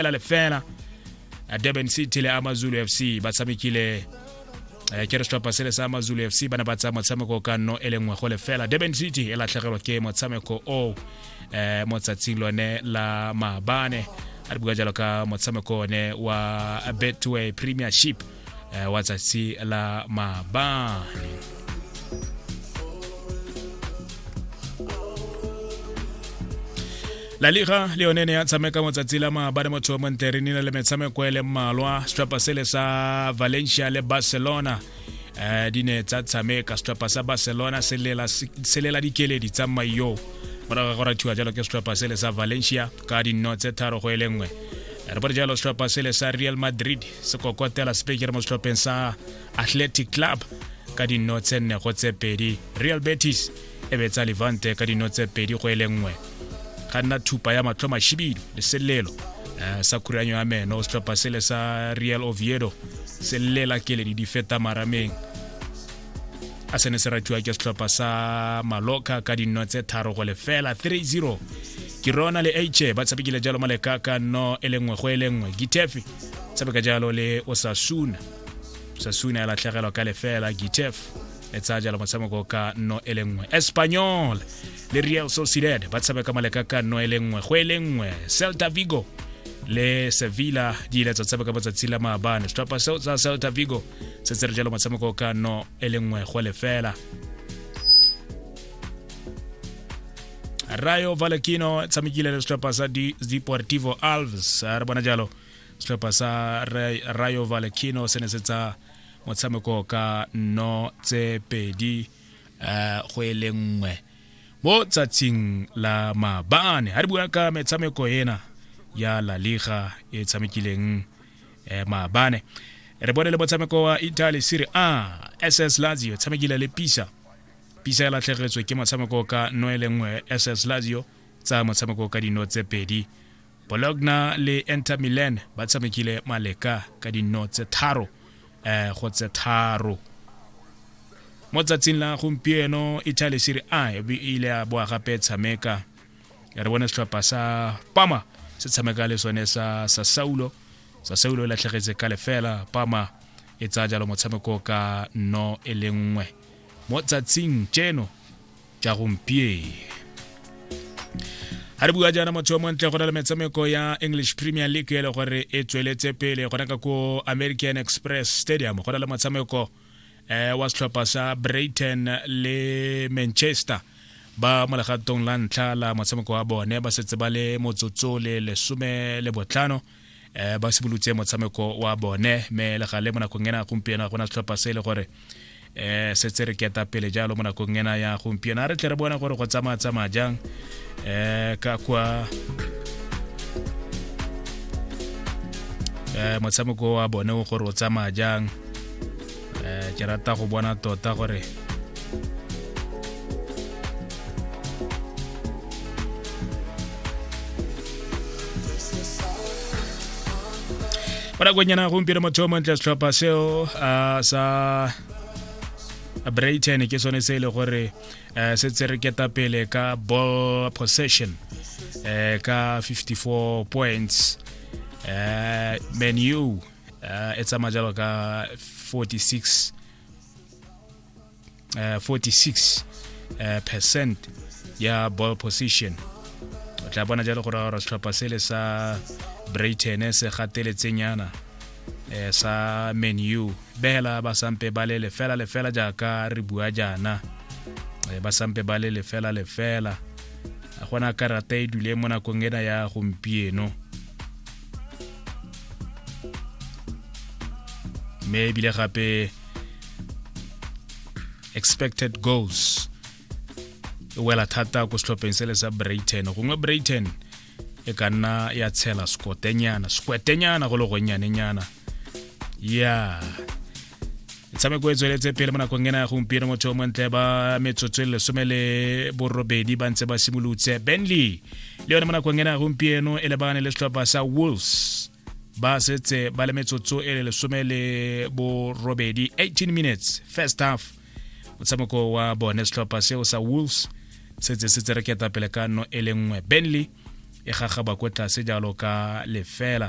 fela le fela durban city le amazulu f c ba tshamekile eh, ke re setlhopha se le sa amazulu f c ba ne ba tsaya motshameko ka nno e le nngwe go le fela durban city e latlhegelwa ke motshameko o eh, mo tsatsing lone la maabane a re bua jalo ka motshameko one wa betway premiership eh, wa tsatsi la mabane la liga le yone ne ya tshameka motsatsi la maabane motho wa montle re nile le metshameko e le mmalwa setlhopha sele sa valencia le barcelona um di ne tsa tshameka setlhopha sa barcelona se lela dikeledi tsa mayo morago ga go rathiwa jalo ke setlhopha sele sa valencia ka dinno tse tharo go e le nngwe re bore jalo setlhopha sele sa real madrid se kokotela sepekere mo setlhopheng sa athletic club ka dinno tse nne go tse pedi real betis e betsa levante ka dinno tse pedi go e le nngwe ga nna thupa ya matlho mashibidu le selelo eh, sa khuranyo ya meno setlhopha sele sa real oviedo se llela keledi di feta marameng a sene se ratiwa ke setlhopha sa maloka ka dinno tse tharo go lefela 3-0 ke rona le h ba tshabekile jalo malekaka no e lengwe go e lengwe gitefi tshameka jalo le osasuna osasuna ya latlhegelwa ka lefela gitef e tsaya jalo motshameko ka nno e le nngwe espanyol le real sociedad ba tshameka maleka ka nno e le nngwe go e le nngwe celta vigo le sevilla di ile tsa tshameka matsatsi la maabane setlhopha seo sa celta vigo se tsere jalo motshameko ka nno e le nngwe go lefela rayo valakino tshamekile le setlhopha sa Di- deportivo alves a re bona jalo setlhopha sa Ra- rayo valakino se ne se tsa motshameko ka no tse pedi eh, go e le nngwe mo tsatsing la mabaane ha re bua ka metshameko ena ya la liga e tshamekileng eh, maabane re bone le motshameko wa italy serie a ss lazio e tshamekile le pisa pisa e latlhegetswe ke motshameko ka no e le nngwe ss lazio tsa motshameko ka dino tse pedi bologna le enter milan ba tshamekile maleka ka dino tse tharo um go tse tharo mo tsatsing la gompieno italy serie a e ile ya boa gape tshameka re bone setlhopha sa pama se tshameka le sone sa sa saulo sa saulo e latlhegetse ka lefela pama e tsaya jalo motshameko ka no e le nngwe mo tsatsing tseno tsa gompieno ga re bua jaana motho yo montle go na le metshameko ya english premier league e le gore e tsweletse pele gona ka ko american express stadium go na le motshameko eh, wa setlhopha sa brighton le manchester ba mo legatong la ntlha la motshameko wa bone ba setse ba le motsotso le lesome le botlhano um ba simolotse motshameko wa bone mme le gale mo nakong ena gompieno ga gona setlhopha se e le gore um setse re keta pele jalo mo nakong ena ya gompieno a re tle re bone gore go tsamaya tsamaya jang um ka kwa um motshameko wa bone gore o tsamaya jang eh, ke rata go bona tota gore fela kwenyana gompieno motho yo montle setlhopha seo a sa brayton ke sone se e le gore um se tse re keta pele ka ball possession um ka 54 points um menu uh, e tsamaya jalo ka 46 uh, 46 uh, percent ya ball position o tla bona jalo gore gore setlhopha sele sa brighton se gateletsenyana eh, sa menu behela ba sampe ba le lefela lefela jaaka re bua jaana eh, ba sampe ba le lefela lefela a gona karata e dule mo nakong ena ya gompieno mme ebile gape expected goals e wela thata ko setlhopheng se le sa brighton gongwe brighton e ka nna ya tshela skotenyana skwetenyana go le gonnyanenyana ya yeah. metshameko e tsweletse pele mo nakong ena ya gompieno motho o montle ba metsotso e lesome le borobedi ba ntse ba simolotse benley le yone mo nakong ena ya gompieno e lebagane le setlhopha sa wolves ba setse ba le metsotso e le lesome le borobedi 18 minutes first half motshameko wa bone setlhopha seo sa wolves setse se tsereketa pele ka no e le nngwe benley e gagaba ko tlase jalo ka lefela